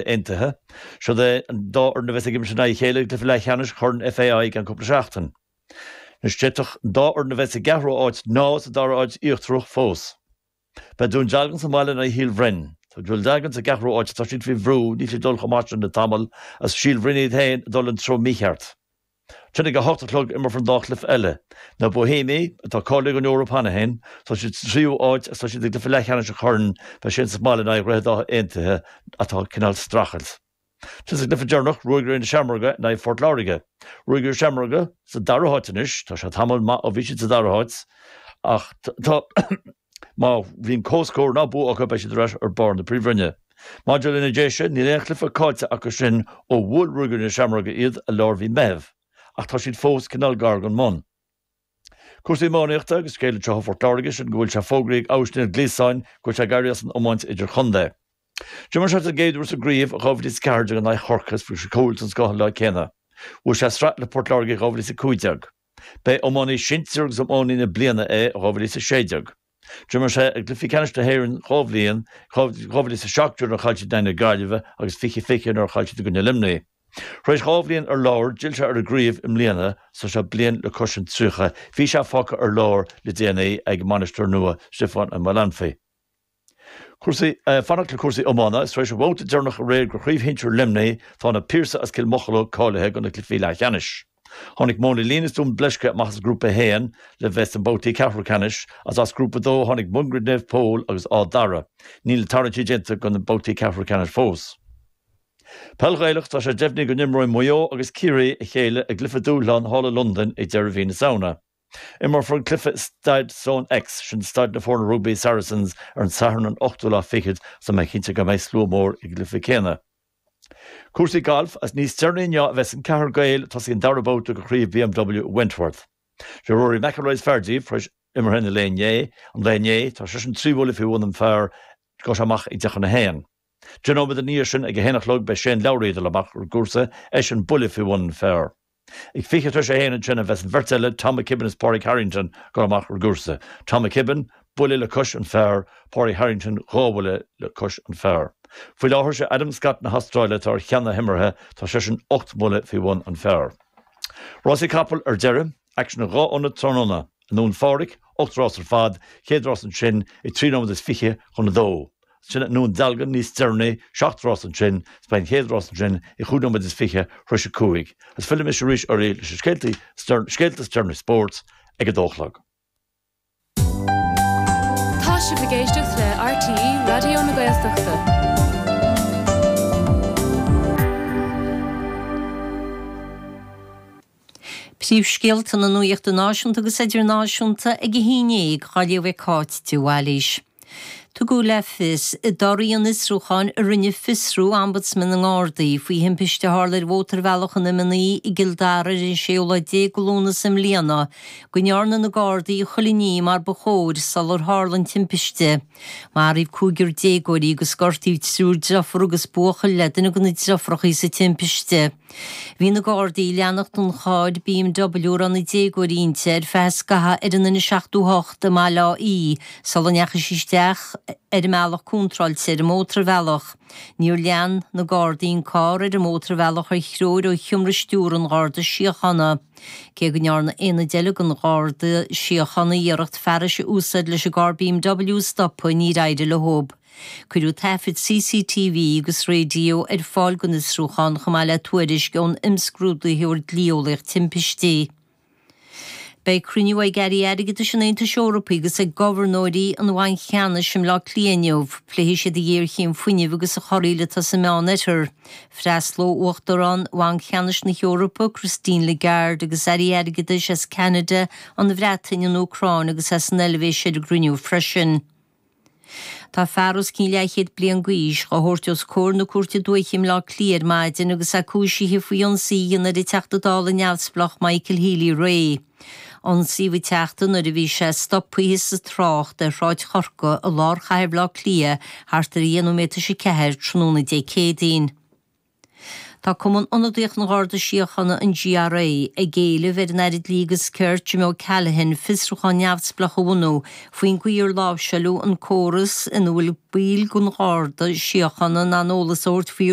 Aontaithe. Siod é an dá fhoireann a bheas ag imirt in aghaidh a chéile i gcluiche leathcheannais Chorn FAI i gceann cúpla seachtain. Anois, d'fhéadfadh an dá fhoireann a bheith sa gceathrú háit nó sa dara háit íochtarach fós. Beidh Dún Dealgan sa mbaile in aghaidh Shíol Bhroin. Tá Dún Dealgan sa gceathrú áit, tá siad faoi bhrú, níl siad ag dul chomh maith sin le tamall, agus Síol Bhroin iad féin ag dul an treo mícheart. Ansin ag a hocht a chlog imreofar an dá chluiche eile. Na Boihéimigh, atá cáilithe don Eoraip cheana féin, tá siad sa tríú háit agus tá siad i gcluiche leathcheannais an Choirn, beidh siad sa mbaile in aghaidh Dhroichead Átha Aontaithe atá ag cineál streachailt. Is ansin sa gcluiche deireanach, Ruagairí na Seamróige in aghaidh Phort Láirge. Ruagairí na Seamróige sa dara háit anois, tá sé tamall maith ó bhí siad sa dara háit, ach tá. Má bhíonn comhscór ná bua acu, beidh siad ar ais ar barr na Príomhroinne. Maidir leis na Déise, níl aon chluiche caillte acu sin ó bhuail Ruagairí na Seamróige iad i lár mhí Meithimh, ach tá siad fós cineál gar don mbun. Cúrsaí iománaíochta agus scéal anseo ó Phort Láirge sin go bhfuil sé fógraithe ag Austin Gleeson go bhfuil sé ag éirí as an iomáint idir-chontae. D'imir sé den gcéad uair sa gcraobh i 2014 in aghaidh Chorcaí agus fuair sé cúl den scoth an lá céanna. Bhuaigh sé sraith le Port Láirge i 2015. Ba é iománaí sóisir agus iománaí na bliana é i 2016. D'imir sé i gcluichí ceannais na hÉireann dhá bhliain, 2017 nuair a chaill siad in aghaidh na Gaillimhe agus 2020 nuair a chaill siad i gcoinne Luimnigh. Tar éis dhá bhliain ar lár, d'fhill sé ar an gcraobh i mbliana, ach is é bliain le cois an 30, bhí sé fágtha ar lár le déanaí ag a mbainisteoir nua, Stiofán Ó Maolanfaidh. Cúrsaí, Fanacht le cúrsaí iomána, Is tar éis an bhabhta deireanach aréir de Chraobh Shinsir Luimnigh tá Na Piarsaigh as Cill Mocheallóig cáilithe do na cluichí leathcheannais. Tháinig Móin an Lín is Dún Bleisce amach as Grúpa 1 le bheith sna babhtaí ceathrú ceannais agus as Grúpa 2 tháinig Mungairit Naomh Pól agus Áth Dara. Níl na tarraingtí déanta do na babhtaí ceathrú ceannais fós. Peil Ghaelach, Tá sé deimhnithe go n-imreoidh Maigh Eo agus Ciarraí a chéile i gcluiche dúshláin thall i Londain ag deireadh mhí na Samhna. Imreofar an cluiche i Staid StoneX, sin staid na foirne rugbaí Saracens, ar an Satharn an 8ú lá fichead is tá mé cinnte go mbeidh slua mór ag an gcluiche céanna. Cúrsaí gailf, is níos deireanaí inniu a bheas an ceathrar Gael ag tosaí an dara babhta de Chraobh BMW i Wentworth. Sé Rory McIlroy is fearr díobh, tar éis imeartha an lae inné, tá seisean trí bhuille faoi bhun an phar agus amach ag deich tar éis a haon. Deich nóiméad i ndiaidh sin ag a haon a chlog beidh Shane Lowry ag dul amach ar an gcúrsa, eisean buille faoi bhun an phar. Ag fiche tar éis a haon ansin a bheas an bheirt eile, Tom McKibbin is Pádraig Harrington ag dul amach ar an gcúrsa. Tom McKibbin, buille le cois an phar, Pádraig Harrington, dhá bhuille le cois an phar. Faoi láthair sé Adam Scott na hAstráile atá ar cheann na himeartha, tá seisean ocht mbuille faoi bhun an phar. Rásaí capall ar deireadh, aicsean i dhá ionad tráthnóna. I nDún Phádraig, ocht rás ar fad, chéad rás ansin ag trí nóiméad is fiche chun a dó. sin i nDún Dealgan níos deireanaí, seacht rás ansin, 's beidh an chéad rás ansin ag cúig nóiméad is fiche tar éis a cúig, 's fillimis arís oraibh leis na scéalta is deireanaí spóirt ag a dó a chlog. Tá sibh ag éisteacht le RTÉ Raidió na Gaeltachta. Príomhscéalta na nuachta náisiúnta agus idirnáisiúnta ag a hAon Déag á léamh ag Cáit de Bhailís. Tugadh le fios i dtoradh an fhiosrúcháin a rinne fiosrú Ombudsman na nGardaí faoi thimpiste a tharla ar Mhótarbhealach an M9 i gCill Dara ar an 16ú lá de Lúnasa i mbliana go ndearna na Gardaí chuile ní mar ba chóir sular tharla an timpiste. Maraíodh cúigear déagóirí agus gortaíodh triúr deirfiúr agus buachaill le duine de na deirfiúracha sa timpiste. Bhí na Gardaí ag leanacht an chairr BMW a raibh na déagóirí inti ar feadh scaithimh ar an N78 i mBaile Átha Í sula ndeachaigh sí isteach ar an mbealach contráilte ar an mótarbhealach. Níor lean na Gardaí an carr ar an mótarbhealach ar threoir ó sheomra stiúrtha an Gharda Síochána, cé go ndearna aonad eile den Gharda Síochána iarracht fearas a úsáid leis an gcarr BMW a stopadh ach níor éirigh leob. Cuireadh taifid CCTV agus raidió ar fáil don fhiosrúchán chomh maith le tuairisc ón imscrúdaitheoir dlí-eolaíocht timpistí. Beidh cruinniú ag Airí Airgeadais an Aontais Eorpaigh agus ag Gobharnóirí an Bhainc Cheannais i mBleá Cliath inniu. Pléifidh siad an ghéarchéim fuinnimh agus an chorraíl atá sa Meán Oirthear. Freastlóidh Uachtarán Bhanc Cheannais na hEorpa, Christine Lagarde agus Airí Airgeadais as Ceanada, an Bhreatain, an Úcráin agus as an Eilvéis ar an gcruinniú freisin. Tá fear os cionn leathchéad bliain d'aois á thabhairt os comhair na Cúirte Dúiche i mBleá Cliath ar maidin agus é cúisithe faoi ionsaí a dhéanamh ar an Teachta Dála Neamhspleách Michael Healy-Rae. Ionsaíodh an Teachta nuair a bhí sé stoptha sa trácht ar Shráid Chorcaí i lár chathair Bhleá Cliath thart ar dheich nóiméad tar éis a ceathair tráthnóna Dé Céadaoin. Tá Cumann Ionadaíoch an Gharda Síochána, an GRA, ag éileamh ar an Aire Dlí agus Cirt, Jim O'Callaghan, fiosrúchán neamhspleách a bhunú faoin gcaoi ar láimhseáiltear an córas ina bhfuil baill den Gharda Síochána in ann eolas a thabhairt faoi